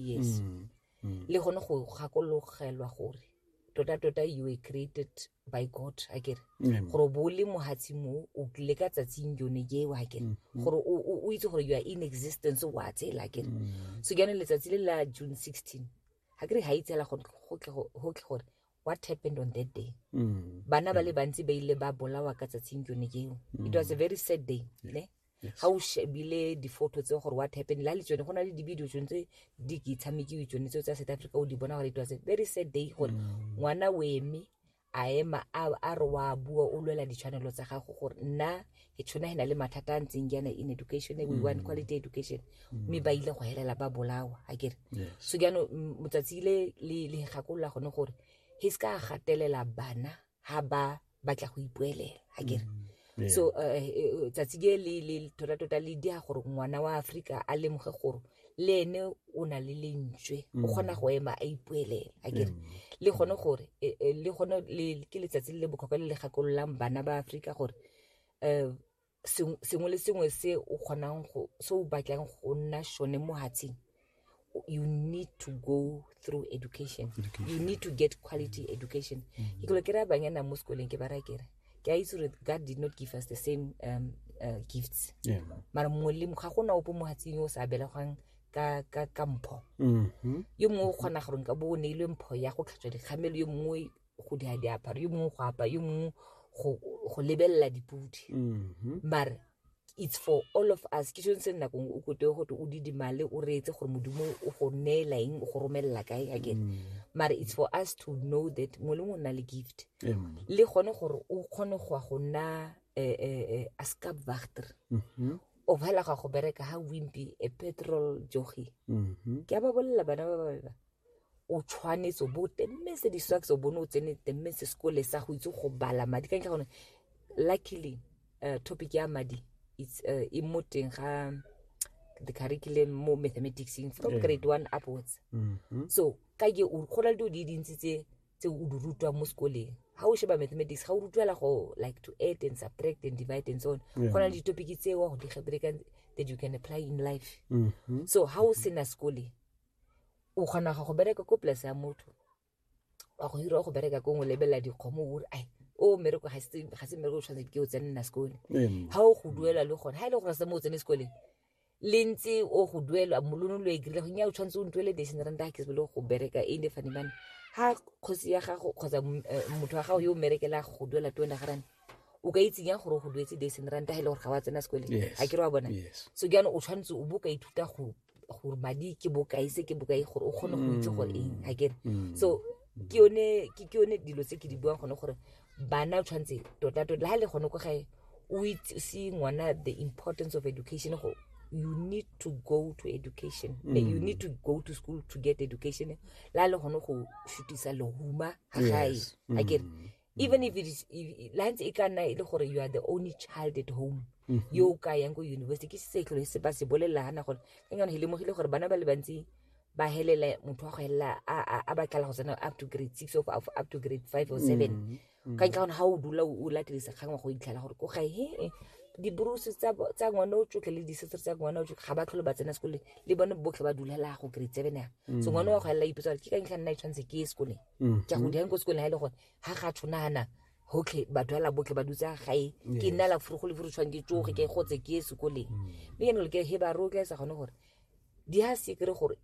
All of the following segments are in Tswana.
yes mm, mm. le gone go gakologelwa gore tota-tota you were created by god a kere gore bo le mohatsi mo o tlile ka tsatsing yone eo a kere mm-hmm. gore o itse gore you are in existence wa tsela a kere mm. so ke yone letsatsi le la june 16 ga kere ga itsela go tle gore what happened on that day mm. bana ba le mm. bantsi ba ile ba bolawa ka tsatsing yone eo it was a mm. very sad day ne ga o shebile di-photo tse gore what happened la le tsone go na le di-video tsone tse di ke tshamekiwe tsone tseo tsa south africa o di bona gore it was a very sad day gore mm. ngwana o eme a ema a re wa bua o lwela ditshwanelo tsa gago gore nna ke tshwana he na le mathata a ntseng jaana in education we mm. want quality education mm. mme ba ile go helela ba bolawa a kere so jaanong motsatsi ile le gakolola gone gore he se ka gatelela bana ha ba batla go ipuelela a kere mm, so eh, eh, eh, tsatsi ke le le tota tota le dia gore ngwana wa Afrika a lemoge gore le ene o na le lentswe o mm. kgona go ema a ipuelela a kere mm. le gone gore le gone ke letsatsi le le bokhokwa le le gakololang bana ba Afrika gore um sengwe le sengwe se o kgonang go se o batlang go nna sone mo hatsing you need to go through education, education. you need to get quality mm. education mm. ke kelo ke raya banyana mo sekoleng ke ba raya kere ke a itse gore god did not give us the same um, uh, gifts yeah. mara mongwe le ga gona opo mo hatsing o sa belegwang ka ka ka mpho mm -hmm. yo mongwe o kgona gore nka bo o neilwe mpho ya go tlhatswa dikgamelo yo mongwe go di diaparo yo mongwe go apa yo mongwe go lebelela dipudi mm-hmm. mare it's for all of us ke sone se nna kong o kote gote o didimale o reetse gore modimo o go neela eng o go romelela kae again mm. mare it's for us to know that mongwe le mongwe o nna le gift le gone gore o kgone go ya go nna eh, eh, eh, a ska vagter mm-hmm. o bhala ga go bereka ha wimpi a petrol jogi mm-hmm. ke a ba bolelela bana ba babeba o tshwanetse o bo o temetse di-socks o bone o tsene temetse sekole sa go itse go bala madi ka ntlha gone luckily uh, topic ya madi it's uh, e mo teng ga the curriculum mo mathematicseng from yeah. grade one upwards mm -hmm. so ka ke go na le dilo di dintsi tse tse o di rutwang mo sekoleng ga o sheba mathematics ga o rutwela go like to add and subtract and divide and so on go na le ditopic tse wa go di gebrekang that you can apply in life mm -hmm. so ga o sena sekole o kgona go bereka ko polase ya motho wa go hirwa go bereka ko ngwe lebelela dikgomo ore ai o mmereko ga se mmereko o tshwanetse ke o tsene nna sekole ga o go duela le gone ga e le gore se mo o tsene sekole le ntse o go duelwa molono lo e kry-ile go nya o tshwanetse o ntuele dation rand ga ke sebele go bereka e ne fanemane ga kgosi ya gago kgotsa eh, motho wa gago yo o merekela go duela tone ga rane o ka itsenya gore go duetse dason ranta ga e le gore ga wa tsena sekole ga ke re wa bona so ke yana o tshwanetse o bo ka ithuta go gore madi ke bokae se ke bokae gore o kgone go itse gore eng a kere so ke yone ke ke yone dilo tse ke di buang gone gore bana o tshwanetse tota tota le ha le gone ko gae o itse se ngwana the importance of education go you need to go to education mm. you need to go to school to get education la le gone go shutisa lehuma ga gae a kere even if it is if, lance e ka nna e le gore you are the only child at home mm -hmm. yo o ka yang ko university ke se tlhole se ba se bolelela gana gore ke ngwana he lemogile gore bana ba le bantsi ba helela motho wa go helela a batlela go tsena up to grade six of up to grade five or seven mm -hmm. Mm. ka ntlha gone ga o dula o latelisa kgang wa go itlhela gore ko gae he dibruse tsa ngwane o tsotlhe le disesere tsa ngwane o tsotlhe ga ba tlhole ba tsena sekole le bone botlhe ba dulela go grade seven ya mm. so ngwane wa go elela ipetsa gore ke ka ntlha nna e tshwanetse ke ye sekoleng Mm-hmm. ke a go dira ko sekoleng ga e le gore ga ga tshwanana gotlhe batho ala botlhe ba dutse gae ke nna la furu go le furu tshwang ke tsoge ke gotse ke ye sekoleng mm. mme ke nole ke he ba rotla e sa gone gore di ha se kry gore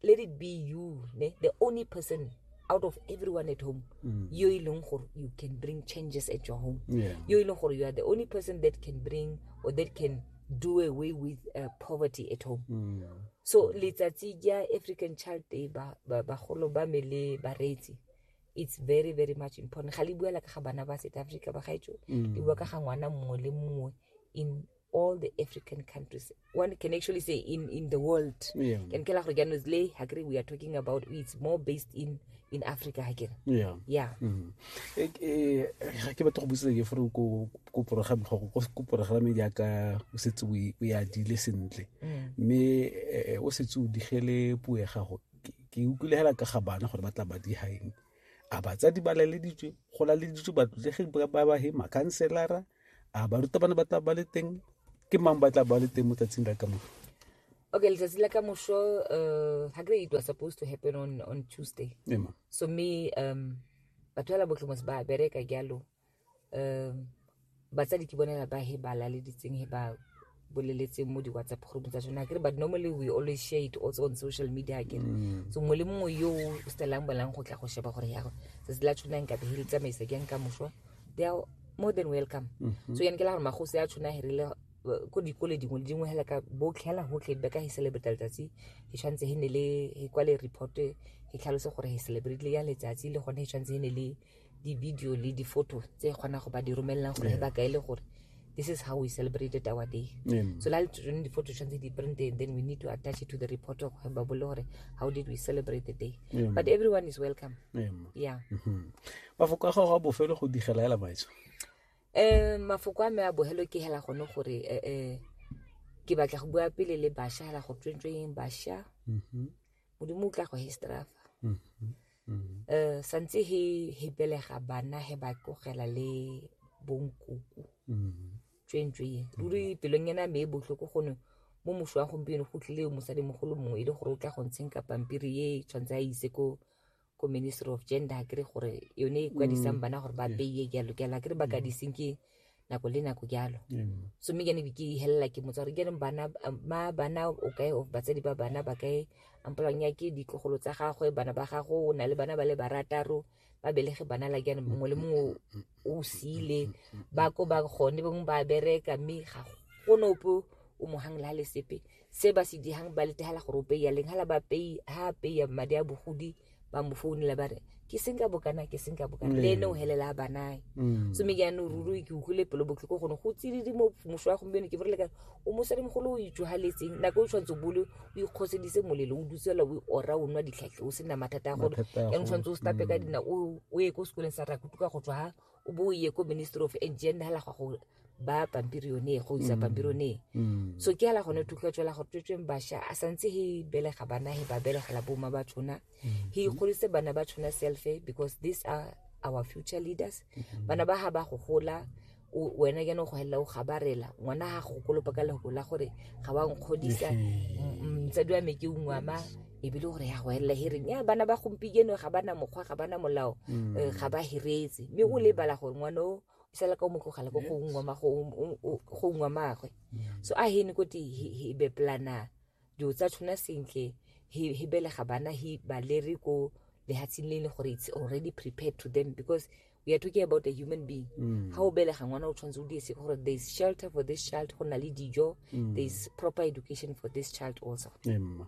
let it be you ne the only person out of everyone at home mm. yo e leng gore you can bring changes at your home yo e leng gore you are the only person that can bring or that can do away with uh, poverty at home mm. so letsatsi ja african child day bagolo ba me le bareetsi it's very very much important ga le buela ka ga bana ba south africa ba gaetso mm. le bua ka ga ngwana mongwe le mongwe in all the african countries one can actually say in, in the world yeah. can kela gore jaanong le hakere we are talking about it's more based in in africa ga kere yeah yeah Mhm. Eh, eh, ga ke batla go busetsa ke fore ko ko program go ko ko program jaaka o setse o e- o e adile sentle Mm. mme eh, o setse o digele puo ya gago Ke- ke utlwile hela ka ga bana gore ba tla ba di haeng a batsadi ba laleditswe go laleditswe batlotlegi ba ba he makhanselara a barutabana ba tla ba le teng ke mang ba tla ba le teng mo tsatsing la ka mo okay letsatsi la ka mosho uh, ha kere it was supposed to happen on, on tuesday yeah, ma. so me um, batho ba la botlhomos ba bereka jalo um, batsadi ke bone ba he ba laleditseng he ba boleletseng mo di-whatsapp group tsa tsone akere but normally we always share it also on social media akere mm. so mongwe le mongwe yo o stelang bolang go tla go sheba gore yago tsatsi la tshona nka be le tsamaisa ke nka mošwa they are more than welcome mm-hmm. so yane ke la gore magosi a tshona herile ko dikole dingwe le dingwe hela ka botlhela gotlhe be ka he celebrate letsatsi he tshwanetse he ne le he kwale report he tlhalose gore he celebrate le ya letsatsi le gone he tshwanetse he ne le di-video le di-photo tse kgona go ba di romelelang gore yeah. ba ka e le gore this is how we celebrated our day yeah. so la tsone di-photo tshwanetse di printe then we need to attach it to the report of ba bole gore how did we celebrate the day yeah. but everyone is welcome yeah, yeah. Mm -hmm. mafoko a gago a bofelo go digela ela maitso um mafoko a me a bogelo ke hela gone gore eh, eh, ke batla go bua pele le basha hela go tswentsweng basha mm-hmm. modimo o tla go histrafa mm-hmm. mm. eh, santse he he belega bana he ba tlogela le bonkoko mm. tswentswe ye mm. ruri pelong ena me e botlhoko gone mo moso wa gompieno go tlile mosadimogolo mongwe e le gore o tla go ntsheng ka pampiri e tshwanetse a ise ko ko ministry of gender kere gore yone e kwadisang bana gore ba beye jalo ke ala kere ba ka diseng ke nako le nako jalo so mme kene ke helela ke motsa gore kereng bana ma bana o kae of batsadi ba bana ba kae ampolwang ya ke ditlogolo tsa gagwe bana ba gago o na le bana ba le barataro ba belege bana la jaanong mongwe le mongwe o siile ba ko ba gone bangwe ba bereka mme ga gone ope o mohang le ga le sepe se ba se dihang ba letegela gore o peya leng hala ba pei ha peya madi a bogodi ba mo founela ba re ke seng ka bokana ke seng ka bokana le ene o helela a banae mm. so me jaanong ruri ke utlwile pelo botlhoko gone go tsididi mo moso wa gompieno ke borele ka o mosadimogolo o itswagaletseng nako o tshwanetse bole o ikgosedise molelo o dutsela o ora o nwa ditlhatlhe o sena mathata a gone yanong tshwanetse o stape ka mm. dina o ye ko sekoleng sa rakutuka go tswa o bo o ye ko ministry of engine hala gwa go ba pampiri yone go isa pampiri yone so ke hala gone thutlwa tswela gore tswetsweng basha a santse he belega bana he ba belegela boma ba tshona he ikgodise bana ba tshona selfe because these are our future leaders bana ba ha ba go gola o- wena ke no go hella o gabarela ngwana ha go kolopa ka lego la gore ga wa nkgodisa mtsadi wa me ke ungwama e be le gore ya go elela hereng ya bana ba gompieno ga bana mokgwa ga bana molao mm. eh, ga ba heretse mme o lebala gore ngwana o fela ka o mo tlogela ko go ungwa magwe mm. so a hene ko he be plana dilo tsa tshwana sentle he belega bana he ba lere ko lehatsheng le e leng gore it's already prepared to them because we are talking about a human being mm. ga o belega ngwana o tshwanetse o diese gore there is shelter for this child go na le dijo mm. there is proper education for this child also Emma.